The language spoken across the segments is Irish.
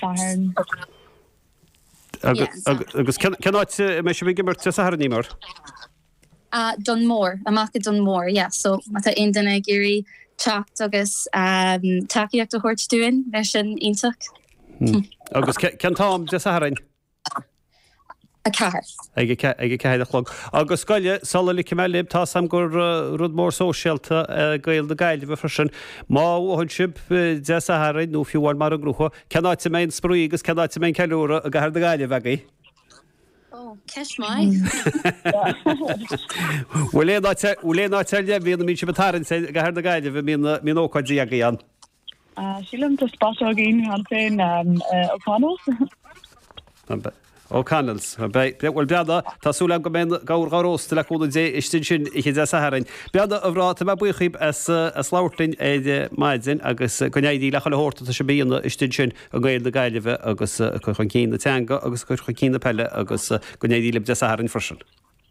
Satharn. Agus cén áit a mbeidh sibh ag imirt Dé Sathairn, Eimear? Dún Mór, amach i Dún Mór, yeah. So má tá aon duine ag iarraidh teacht agus tacaíocht a thabhairt dúinn, bheadh sin iontach. Agus cén t-am Dé Sathairn? 4. ag a ceathair a chlog. Agus cogar, sula ligfidh mé libh, tá 's agam gur rud mór sóisialta é Gaeil na Gaillimhe freisin. Má bhuann sibh Dé Sathairn, nó fiú amháin mara ngnóthaíonn, cén áit a mbeidh an spraoi agus cén áit a mbeidh an ceiliúradh i gcathair na Gaillimhe agaibh? Oh, ceist maith. Bhfuil aon áit ar leith a bhíonn, a mbíonn sibh ag tarraingt i gcathair na Gaillimhe, a mbíonn ócáidí agaibh ann? Sílim gur spota éicint cheana féin O'Connells. O'Connells. Bhuel, a mhná, tá súil agam go mbeidh an gabhar dhá róstadh le cúnamh Dé istigh ansin Oíche Dé Sathairn. Bhuel a mhná, tá mé buíoch dhíbh as labhairt linn ar maidin agus go n-éirí le chuile shórt atá sibh a dhéanamh istigh ansin i nGaeil na Gaillimhe agus a cur chun cinn na teanga agus a cur chun cinn na peile agus go n-éirí libh Dé Sathairn freisin.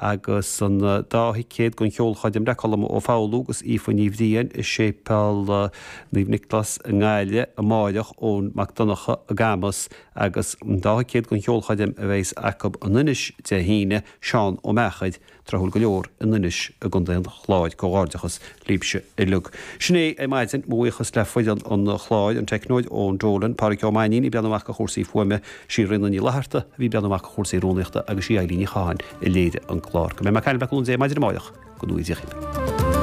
agus an dá thicéad don cheolchoirm le Colm Ó Foghlú agus Aoife Ní Bhriain i Séipéal Naomh Nioclás i nGaillimh amáireach, Eoin Mac Donnacha i gCamus, agus an dá thicéad don cheolchoirm a bheidhs acu in Inis Dé hAoine, Seán Ó Meachair, tráthúil go leor, in Inis i gContae an Chláir. Comhghairdeachas libhse uilig. Sin é ar maidin. Mo bhuíochas le foireann an chláir, an teicneoir Eoin Dolan, Pádraig Ó Mainín ag breathnú amach ar chúrsaí fuaime, Sí Rinne Ní Fhlatharta, a bhí ag breathnú amach ar chúrsaí rúnaíochta, agus sí Eileen Ní Chatháin, a léirigh an clár go mbeidh mé ag caint libh le cúnamh Dé maidin amáireach go n-éirí libh.